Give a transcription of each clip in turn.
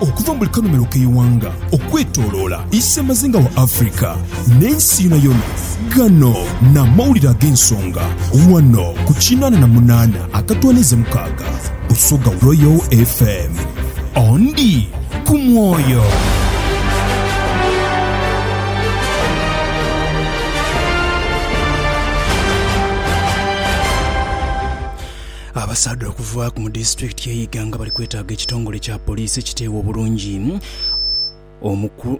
Okuva mu buli kanhumilo k'eighanga okwetoloola isemazinga wa Africa n'ensi yonayona, ghano n'amawulire ag'ensonga ghano ku kinaana na munaana akatwaniiza mukaaga Busoga Royal FM. Ondi. ku mwoyo. Abasaadha okuva mu disitulikiti y'e Iganga bali kwetaaga ekitongole kya poliisi ekiteewa obulungi.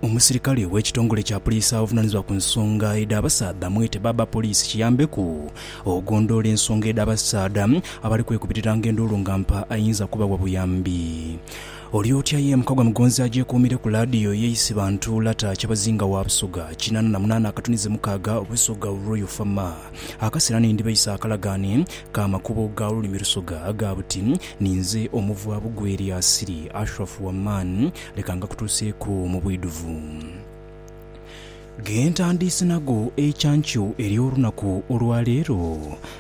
Omusirikale w'ekitongole kya poliisi avunaanizibwa ku nsonga edh'abasaadha mwete Baba Poliisi kiyambeku okugondhoola ensonga edh'abasaadha abali kwekubiriranga enduulu nga mpa ayinza kubawa buyambi. Oli otya ye mukagwa mugonzi agyekuumire ku laadiyo ye Isibantu, Lata, Kyabazinga wa Busoga kinaana na munaana akatunize mukaaga, Busoga Royal Fama. Akasera ni ndibaisa akalagaane ka makubo ga lulimi Lusoga aga buti, Ni nze omuvwa Bugweri Asiri Ashraf Waman, leka ngakutuuseeku mu bwidhuvu. Ge ntandiise nago eicankyo ery'olunaku olwa leero.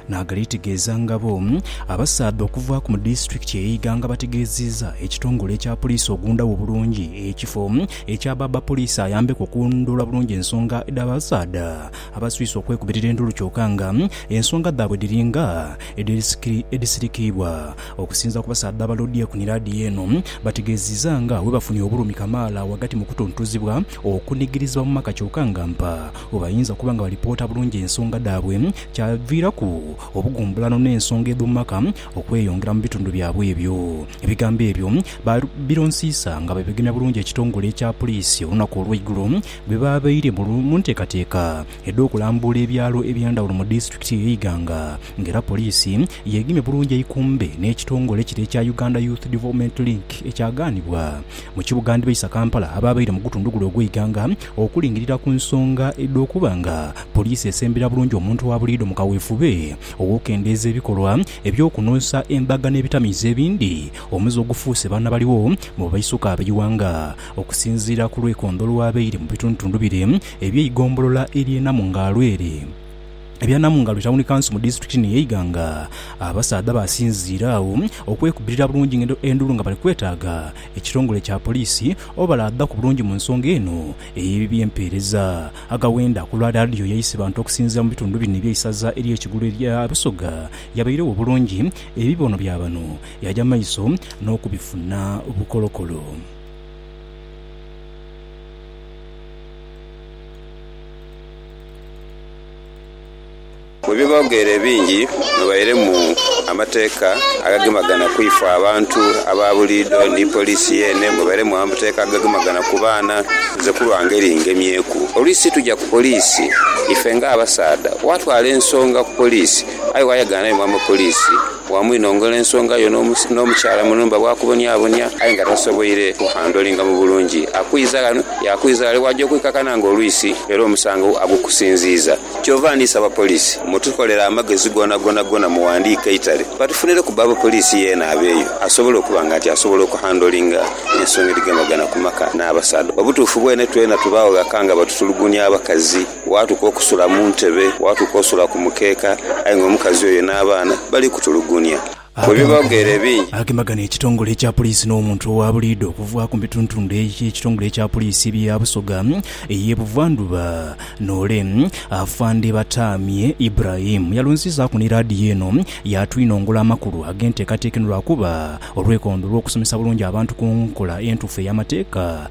Naagaleetegeeza ngabo. Abasaadha okuvaaku mu disitulikiti ey'e Iganga bategeeziiza ekitongole ekya Poliisi ogundawo obulungi ekifo ekya bbaabba Poliisi ayambeku okulondoola bulungi ensonga dh'abasaadha abaswise okwekubirira endulu kyoka nga ensonga dhaabwe dhiri nga edhisirikiibwa Okusinzira ku basaadha ba Loodi Ekuni laadiyo eno, bategeziiza nga webafunye obulumi kamaala ghagati mu kutuntuzibwa okunigirizibwa mu maka kyoka nga mpa webayinza kuba nga balipoota bulungi ensonga dhaabwe kyaviiraku obugumbulano n'ensonga edhomu maka okweyongera mu bitundu byabwe ebyo. Ebigambo ebyo babironsiisa nga bwebegemya bulungi ekitongole ekya puliisi olunaku olweigulo bwebabaire mu nteekateeka edh'okulambuula ebyalo eby'endhawulo mu disitulikiti eyo Iganga nga era poliisi yeegemye bulungi eikumbe n'ekitongole kire ekya Uganda Youth Development Link ekyagaanibwa mu kibuga ndhibaisa Kampala abaabaire mu gutundu gule ogw'e Iganga okulingirira ku nsonga edh'okuba nga poliisi esembera bulungi omuntu wa buliidho mu kaweefube ow'okukendeeza ebikolwa eby'okunhonsa embaga n'ebitamiiza ebindi omuze ogufuuse baana baligho mu baisuka ab'eighanga. Okusinziira ku lwekondho olwabaire mu bitundutundu bire, Eby'eigombolola ery'e Namungalwere. Ebya Namungalwere Tawuni Kanso mu disitulikiti eno ye Iganga. Abasaadha baasinziire agho okwekubirira bulungi endulu nga bali kwetaaga ekitongole kya poliisi obalaadha ku bulungi mu nsonga eno ey'eby'empeereza. Agawenda ku lwa laadiyo ya Isebantu okusinziira mu bitundu bino eby'eisaza ery'e Kigulu erya Busoga yabairegho bulungi ebibono bya bano yaaja maiso n'okubifuna bukolokolo. Mu bighogheero ebingi mwabairemu amateeka agagemagana ku ifwe abantu aba buliidho ni poliisi yeene, mwabairemu amateeka agagemagana ku baana. Nze ku lwa ngeri ngemyeeku oluusi situja ku poliisi ife ng'abasaadha. Waatwala ensonga ku poliisi aye waayagaana ni mwama poliisi Bwamwinongola ensonga yo n'omukyala mu nhumba bwakubonyabonya aye nga tasoboire kuhandlinga mu bulungi, akwiza ghano yaakwiza ghale bwaja okwikakana nga olwisi era omusango agukusinziiza. Kyova ndhi saba poliisi mutukolere amagezi gonagona gona muwandiike eitale batufunireku bba w'abapoliisi yeena abeeyo asobole okuba nga nti asobola okuhandlinga ensonga edhigemagana ku maka n'abasaadha. Obutuufu bwene twena tubaagho ghaka nga batutulugunya abakazi. Waatuka okusula mu ntebe, waatuka osula ku mukeeka, aye nga omukazi oyo n'abaana bali kutulugunya. Bwe biba bigheera ebingi. Agemagana ekitongole ekya Poliisi n'omuntu owa buliidho okuva ku mituntundhe egy'ekitongole ekya Poliisi ebye ya Busoga ey'e Buvandhuba n'ole. Afande Batamye Ibrahim yalonziizaaku ni laadiyo eno yaatwinongola amakulu ag'enteekateeka eno lwakuba olwekondo olw'okusomesa bulungi abantu ku nkola entuufu ey'amateeka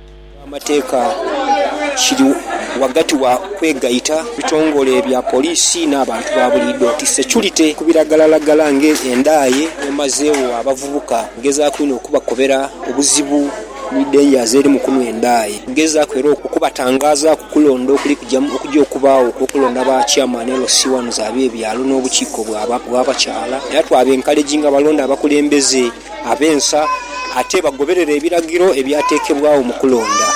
Amateeka kiri ghagati wa kwegaita mu bitongole bya poliisi n'abantu ba buliidho nti securite ku biragalalagala ng'endaaye emazeegho abavubuka ngezaaku inho okubakobera obuzibu ni dangers eri mu kunhwa endaaye. Ngezaaku era okubatangaaza ku kulonda okuli okuja okubaagho okw'okulonda ba chairman LC wans ab'ebyalo n'obukiiko bwa bakyaala era twaba enkaleginga balonde abakulembeze. Ab'ensa ate bagoberera ebiragiro ebyateekebwagho mu kulonda.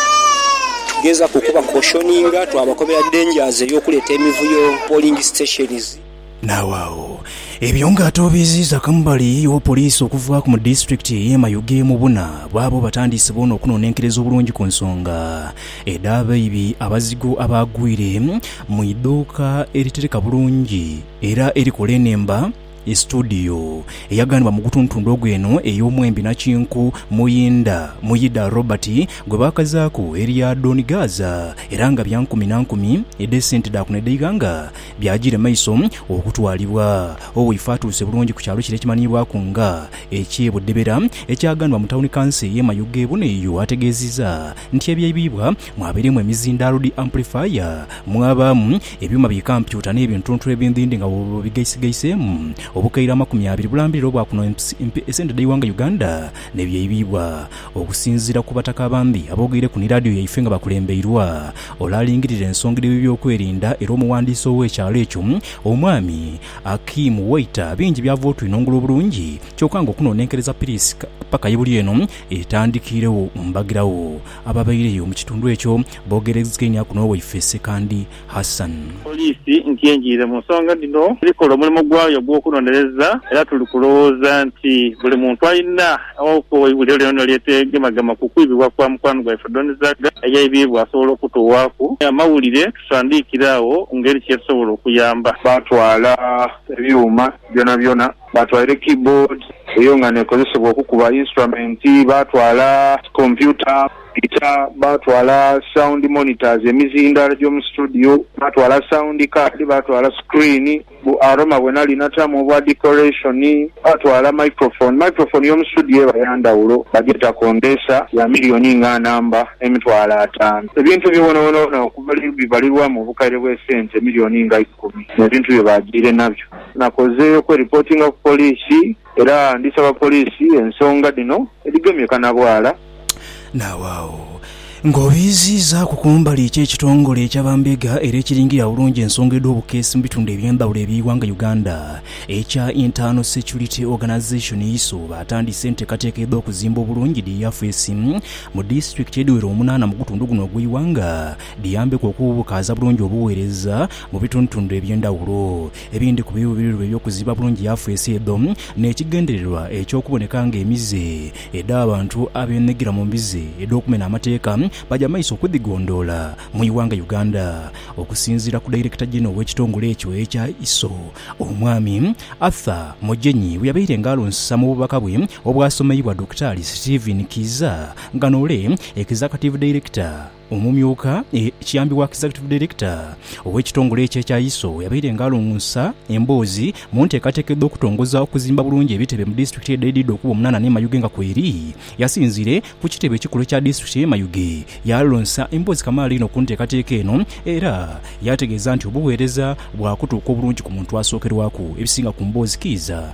Tugezaaku okubakoshoninga, twabakobera dangers ey'okuleeta emivuyo, polling stations. Naagho agho, ebyo nga ate obiiziiza kambali wa poliisi okuvaaku mu disitulikiti ey'e Mayuge mu buna bwabo batandiise boona okunonenkereza obulungi ku nsonga edh'abaibi abazigu abaagwire mu idhuuka eritereka bulungi era erikola enhemba E situdiyo eyaganibwa mu gutuntundu ogwo eno ey'omwembi nakinku Muyinda, Muyida Robert, gwe baakazaaku erya Don Gaaza era nga bya nkumi na nkumi edh'esente dha kuno edh'eighanga byajiire maiso okutwalibwa. Owaife atuuse bulungi ku kyalo kire ekimanhiibwaku nga eky'e Budebera ekyaganibwa mu tawuni kanso ey'e Mayuge. Buno eyo ategeezizza nti ebyaibibwa Mwabirimu emizindaalo dhi amplifier, mwabaamu ebyuma bi kampyuta n'ebintuntu ebindhindhi nga bwoba obigaisigaiseemu, obukaire amakumi abiri bulambirira obwakuno empi esente dh'eighanga Uganda n'ebyaibibwa okusinziira ku Bataka abandi aboogeireku ni laadiyo yaife nga bakulembeirwa ole alingirira ensonga edh'ebyokwerinda era omuwandiisi ow'ekyalo ekyo Omwami Akim Waiter. Bingi byava otwinhongula obulungi kyoka nga okunoonenkereza piriisi paka ye buli eno etandikiiregho mbagirawo. Ababaireyo mu kitundu ekyo boogereizainhaku n'owaife Ssekandi Hassan. Poliisi nti engiire mu nsonga dhino eri kola omulimu gwayo ogw'okunonereza era tuli kulowooza nti buli muntu alina awakuwa eibuliro lyona eryetegemagema ku kwibibwa kwa mukwano gwaife Don Zagga eyaibiibwa asobola okutughaku amawulire tusandiikire agho ngeri kyetusobola okuyamba. Baatwala ebyuma byonabyona Baatwala keyboard, eyo nga n'ekozesebwa okukuba instrument, baatwala kompyuta, guitar, baatwala sound monitors, emizindaalo gy'omu situdiyo, baatwala sound card, baatwala screen, bu aroma bwe nali natamu obwa decoration, baatwala microphone. Microphone y'omu situdiyo eba ya ndhawulo, bagyeta condenser, ya milioni nga namba emitwalo ataanu. Ebintu ebyo byonabyona okuva luli bibalirwamu obukaire bw'esente milioni nga ikumi n'ebintu bye baajiire nabyo. Nakoze okweripotinga ku poliisi era ndisaba poliisi ensonga dhino edhigemye kanabwala. Naawaagho ng'obiiziizaaku ku mbali ki ekitongole ekya bambega era ekiringirira obulungi ensonga edh'obukeesi mu bitundu eby'endhawulo eby'eighanga Uganda ekya Internal Security Organisation, ISO, baatandise enteekateeka edh'okuzimba obulungi dhi yafeesi mu disitulikiti edhiwera omunaana mu gutundu guno ogw'eighanga. Biyambeku okubukaaza bulungi obuweereza mu bitundutundu eby'endhawulo. Ebindhi ku biruubirirwa eby'okuzimba bulungi yafeesi edho n'ekigendererwa eky'okuboneka ng'emize edh'abantu abeenhegira mu mbizi edh'okumena amateeka baja mu maiso okudhigondhoola mu ighanga Uganda. Okusinziira ku Dayirekita Genero w'ekitongole ekyo ekya ISO, Omwami Arthur Mogyenyi bweyabaire nga alunsa mu bubaka bwe obwasomeibwa Dokitaali Stephen Kiiza nga n'ole Executive Director Omumyuka kiyambi wa Executive Director ow'ekitongole ekyo ekya ISO yabaire nga alongosa emboozi mu nteekateeka edh'okutongoza okuzimba bulungi ebitebe mu disitulikiti edhaidhidha okuba omunana n'e Mayuge nga kweri yasinzire ku kitebe ekikulu ekya disitulikiti y'e Mayuge yalonsa emboozi kamaala einho ku nteekateeka eno era yategeeza nti obuweereza bwakutuuka obulungi ku muntu asookerwaku ebisinga ku mboozi kiiza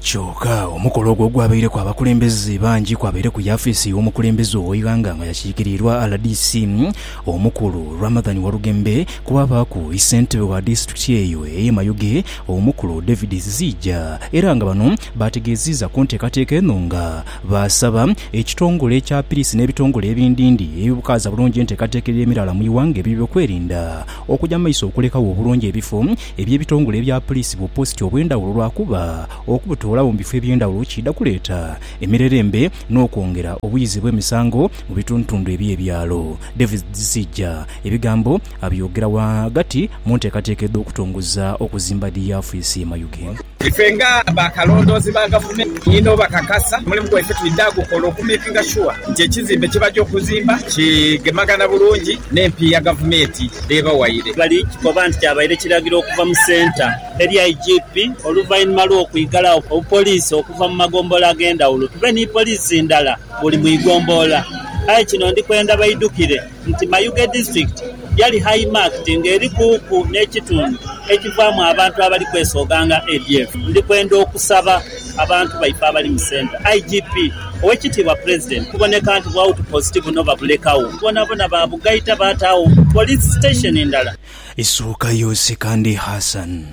Kyoka omukolo ogwo ogwabaireku abakulembeze bangi kwabaireku yafiisi y'omukulembeze ow'eighanga nga yakiikiriirwa rdc omukulu, Ramadhan Walugembe, kwaabaaku yi ssentebe wa disitulikiti eyo ey'e Mayuge, omukulu David Ziziija era nga bano baategeeziiza ku nteekateeka eno nga baasaba ekitongole ekya piriisi n'ebitongole ebindindi ebibukaaza bulungi enteekateeka ey'emiraala mu ighanga eby'ebyokwerinda okugya mu maiso okulekagho obulungi ebifo Ebyo ebitongole ebya puliisi bupositi obw'endhawulo lwakuba okubutoolawo mu bifo eby'endhawulo kiidha kuleeta emirerembe n'okwongera obuyizi bw'emisango mu bitundutundu eby'ebyalo. Davis Dhisija ebigambo abyogera ghagati mu nteekateeka edh'okutongoza okuzimba dhi yaafiisi ye Mayuge. Ife nga ba kalondoozi ba gavumenti inho bakakasa omulimu gwaife twidha gukola okumekinga shuwa nti ekizimbe kye baja okuzimba kigemagana bulungi n'empiiya gavumenti dh'ebawaire. Bali kikoba nti kyabaire kiragiro okuva mu Centre eri IGP oluvainhuma lw'okwigalagho obupoliisi okuva mu magombolola ag'endhawulo tube ni poliisi ndala buli mu igombolola aye kino ndikwenda baidhukire. nti Mayuge Disitulikiti yali high marked nga eri kuuku n'ekitundu ekivaamu abantu abali kwesooga nga ADF. Ndi kwenda okusaba abantu baife abali mu Centre, IGP, Owekitiibwa Pulezidenti kuboneka nti bu outpost buno babulekagho bwonabwona baabugaita baataagho Police Station ndala. Isuuka Yosi Kandi Hassan.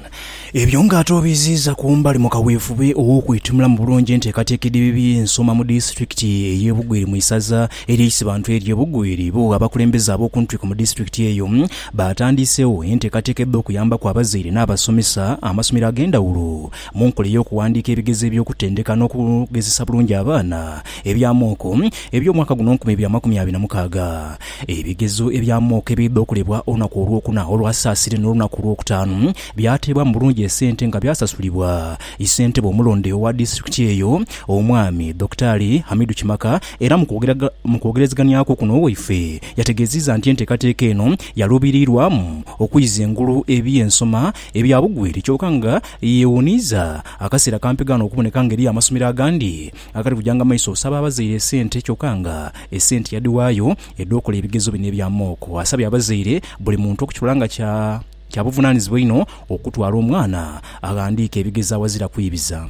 Ebyo nga ate obiziiza ku mbali mu kaweefube ow'okwetunula mu bulungi enteekateeka edhibi bye nsoma mu disitulikiti ey'e Bugweri mu isaza erye Isibantu erye Bugweri, bo abakulembeze ab'okuntwiko mu disitulikiti eyo baatandiiseegho enteekateeka edh'okuyambaku abazaire n'abasomesa amasomero ag'endhawulo Mu nkola ey'okuwandiika ebigezo eby'okutendeka n'okugezesa bulungi abaana ebya mooko eby'omwaka guno nkumi ibiri amakumi abiri na mukaaga, ebigezo ebya mooko ebiidha okolebwa olunaku Olwokuna olwa Saasire n'olunaku Olwokutaanu byateebwamu bulungi esente nga byasasulibwa Issentebe omulonde owa disitulikiti eyo, Omwami Dokitaali Hamidu Kimaka era mu kwogerezeganyaku kuno waife yategeziiza nti enteekateeka eno yaluubiriirwamu okuiza engulu eby'ensoma Ebya bugwire kyoka nga yeewuniiza akaseera kampi gaana okuboneka nga eriyo amasomero agandi agali kujanga maiso osaba abazaire esente kyoka nga esente yadhiwaayo edh'okola ebigezo bino ebya mock. Asabye abazaire buli muntu okukirola nga kya kya buvunaanizibwa inho okutwala omwana aghandiike ebigezo aghazira kwibiza.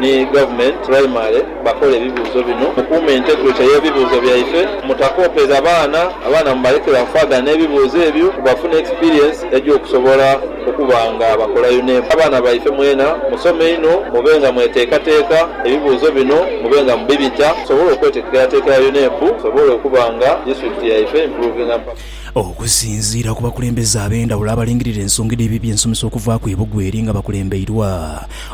ni Government Primary bakole ebibuuzo bino, Mukuume integrity y'ebibuuzo byaife, mutakoopeza baana, abaana mubalekere awo faaganha n'ebibuuzo ebyo ku bafune experience egy'okusobola okuba nga bakola UNEB. Abaana baife mwena musome inho mube nga mweteekateeka ebibuuzo bino mube nga mubibita tusobole okweteekerateekera UNEB tusobole okuba nga district yaife improvinga mpaka. Okusinziira ku bakulembeze ab'endhawulo abalingirira ensonga edh'eby'ebyensomesa okuvaaku e Bugweri nga bakulembeirwa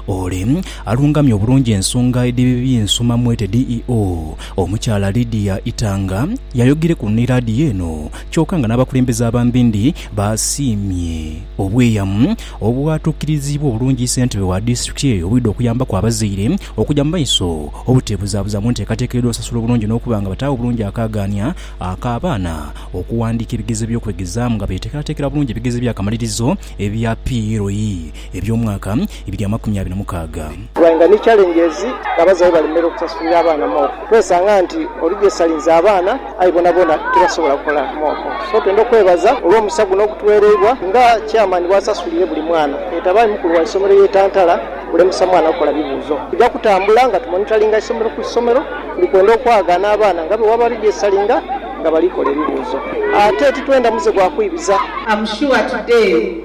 Ole alungamya obulungi ensonga edhibi bi Nsuma Mwete DEO, Omukyala Lydia Itanga yayogereku ni laadiyo eno kyoka nga n'abakulembeze abambindi baasiimye obweyamu obwatuukiriziibwa obulungi Ssentebe wa disitulikiti eyo obwidha okuyambaku abazaire okugya mu maiso obuteebuzabuza mu nteekateeka edh'osasula obulungi n'okuba nga bataagho bulungi akaagaania ak'abaana okuwandiika ebigezo by'okwegezaamu nga beeteekerateekera bulungi ebigezo eby'akamalirizo ebya PUE. eby'omwaka ebiri amakumi abiri mukaaga. Wainga ni challenges abazaire balemera okusasulira abaana mooko kwesanga nti oli jesalinze abaana aye bonabona tibasobola kola mooko so twenda okwebaza olwomusa guno ogutuwereibwa nga chairman bwasasulire buli mwana yetabayo mukulu waisomero ye Tantala kulemesa mwana kukola bibuuzo tuja kutambula nga tumonitalinga isomero ku isomero tuli kwenda okwagana abaana nga bwewaba ali jesalinga nga balikola ebibuuzo ate titwenda muze gwa kwibiza. Am sure today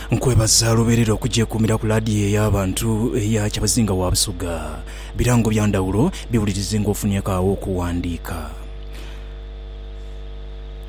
Nkwebaza lubeerera okugyekuumira ku laadiyo ey'abantu eya Kyabazinga wa Busoga. Birango bya ndhawulo biwulirize ng'ofunieku agho okuwandiika.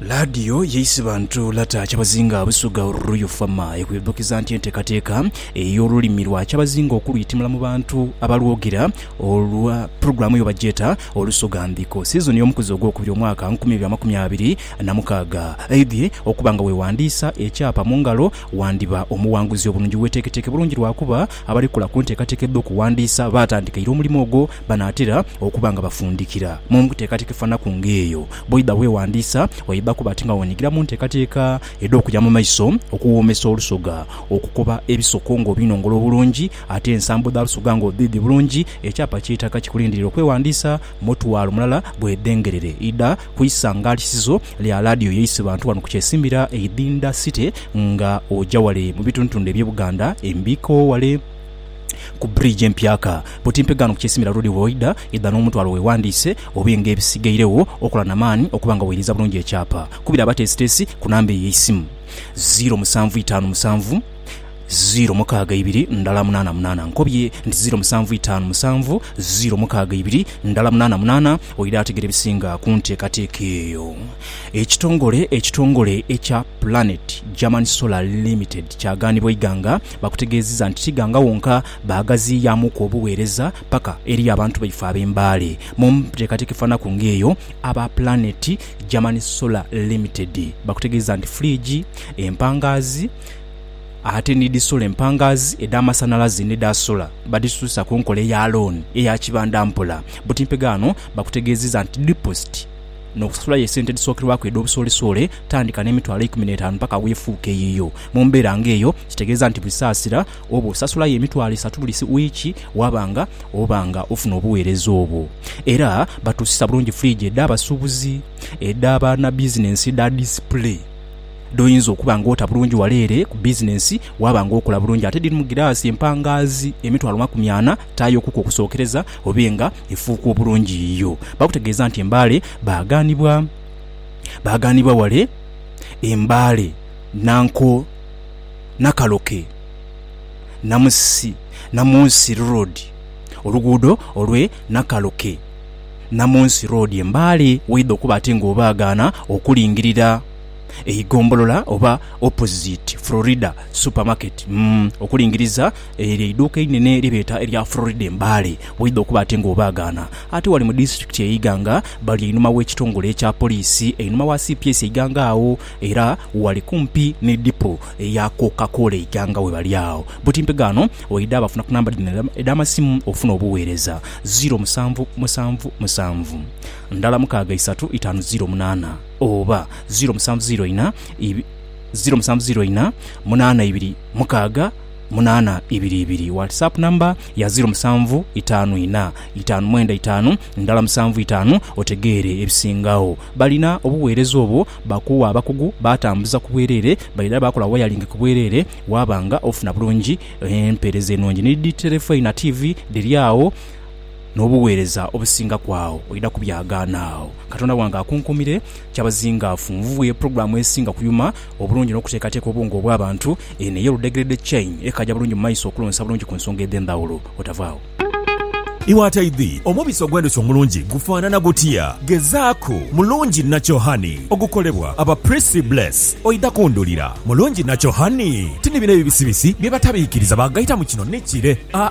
Laadiyo y'Eisibantu Lata Kyabazinga Busoga Oluruyu FAMA ekwidhukiza nti enteekateeka ey'olulimi lwa Kyabazinga okulwitimula mu bantu abalwogera olwa pulogulaamu yo bagyeta Olusoga Ndhiko. Sizoni y'omukuzi ogw'okubiri omwaka nkumi ibiri amakumi abiri Namukaaga, Aidhie okuba nga weewandiisa ekyapa mu ngalo, wandiba omuwanguzi obulungi. Weeteeketeeke bulungi lwakuba abali kola ku nteekateeka edh'okuwandiisa baatandikaire omulimo ogwo banaatera okuba nga bafundikira mu nteekateeka efanaku ng'eyo. Bwoidha weewandiisa, oidha kuba ati nga weenyigira mu nteekateeka edh'okuja mu maiso, okuwoomesa olusoga, okukoba ebisoko ng'obinongola obulungi ate ensambo dha lusoga ng'odhiidhi bulungi. Ekyapa kyetaaga kikulindirire okwewandiisa. Mutwalo mulala gwedhengerere idha ku isangaalisizo lya laadiyo yaise bantu wano ku kyesimbira Idhinda City nga oja wale mu bitundutundu ebye Buganda embiiko wale ku bridge empyaka buti mpegaano ku kyesimbira road bwoidha idha n'omutwalo wewandiise obe nga ebisigairegho okola na maani okuba nga weiriza bulungi ekyapa. Kubira abateesiteesi ku namba eyo eisimu, ziiro musanvu itaanu musanvu, ziiro mukaaga ibiri ndhala munaana munaana. Nkobye nti ziiro musanvu itaanu musanvu ziiro mukaaga ibiri ndhala munaana munaana. Oidha ategera ebisinga ku nteekateeka eyo? Ekitongole ekitongole ekya Planet German Solar Limited kyagaanibwa eighanga bakutegeeziza nti tighanga wonka baagaziiyaamuuku obuweereza paka eri abantu baife ab'e Mbale. Mu nteekateeka efanhaku ng'eyo, aba Planet German Solar Limited bakutegeeza nti fridge, empangaazi, Ate ni dhi sola empangaazi edh'amasanhalaze ni dha sola badhisusa ku nkola eya looni eya kibanda mpola. Butimpegho ghano bakutegeezezza nti dipositi n'okusulayo esente edhisookerwaku edh'obusoolesoole tandika n'emitwalo eikumi n'etaanu paka weefuuka eyiyo. Mu mbeera ng'eyo kitegeeza nti buli saasira oba osasulayo emitwalo esatu buli wiiki waaba nga oba nga ofuna obuweereza obwo. Era batuusisa bulungi firiigi edh'abasuubuzi, edha bannabizinensi edha disipule. dh'oyinza okuba ng'ota bulungi wala ere ku bizinensi waaba ng'okola bulungi ate dhirimu giraasi empangaazi emitwalo makumi ana taayo kuku okusookereza obe nga efuuka obulungi yiyo. Bakutegeeza nti e Mbale baagaanibwa baagaanibwa wale e Mbale, Nanko, Nakaloke, Namusi, Namunsi Road, oluguudo olw'e Nakaloke, Namunsi Road e Mbale w'oidha okuba ate ng'obaagaana okulingirira. eigombolola oba opposite Florida Supermarket umm okulingiriza eryo eiduuka einene lye beeta erya Florida e Mbale. Waidha okuba ate nga obaagaana, ate wali mu disitulikiti e Iganga bali einhuma w'ekitongole ekya poliisi einhuma wa cps e Iganga agho era wali kumpi ni dipo eya Coca Cola e Iganga we bali agho. Buti mpegaano waidha bafuna ku namba dhino edh'amasimu ofune obuweereza, ziro musanvu musanvu musanvu, ndala mukaaga isatu itaanu ziro munaana. oba ziro musanvu ziro inha ibi, ziro musanvu ziro inha munana ibiri mukaaga munana ibiri ibiri. Whatsapp number ya ziro musanvu itaanu inha itaanu mwenda itaanu ndhala musanvu itaanu otegeere ebisingagho. Balina obuweereza obwo, bakuwa abakugu baatambuza ku bwereere, baidha baakola wayalingi ku bwereere waaba nga ofuna bulungi empeereza enungi. Ni dhi terefoina, tiivi, dhiri agho. n'obugheereza obusinga ku agho oidha kubyagaana agho Katonda wange akunkuumire. Kyabazingaafu nvughe pulogulaamu esinga kuyuma obulungi n'okuteekateeka obwongo obw'abantu. Eno eye Ludegerede Chain ekaaja bulungi mu maiso okulonsa bulungi ku nsonga edh'endhawulo otavaagho. Iwe ataidhi, omubisi ogw'endhuki omulungi gufaanana gutya? Gezaaku mulungi nacho honey ogukolebwa aba Prissy Bless oidha kundhulira. Mulungi nacho honey ti ni bino ebibisibisi bye batabiikiriza baagaita mu kino ni kire, aa,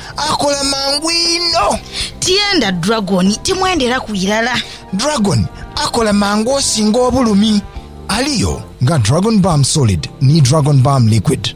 Akola mangu inho. Tyenda dragoni, timwenderaku irala. Dragoni akola mangu osinga obulumi. Aliyo nga Dragon Balm Solid ni Dragon Balm Liquid.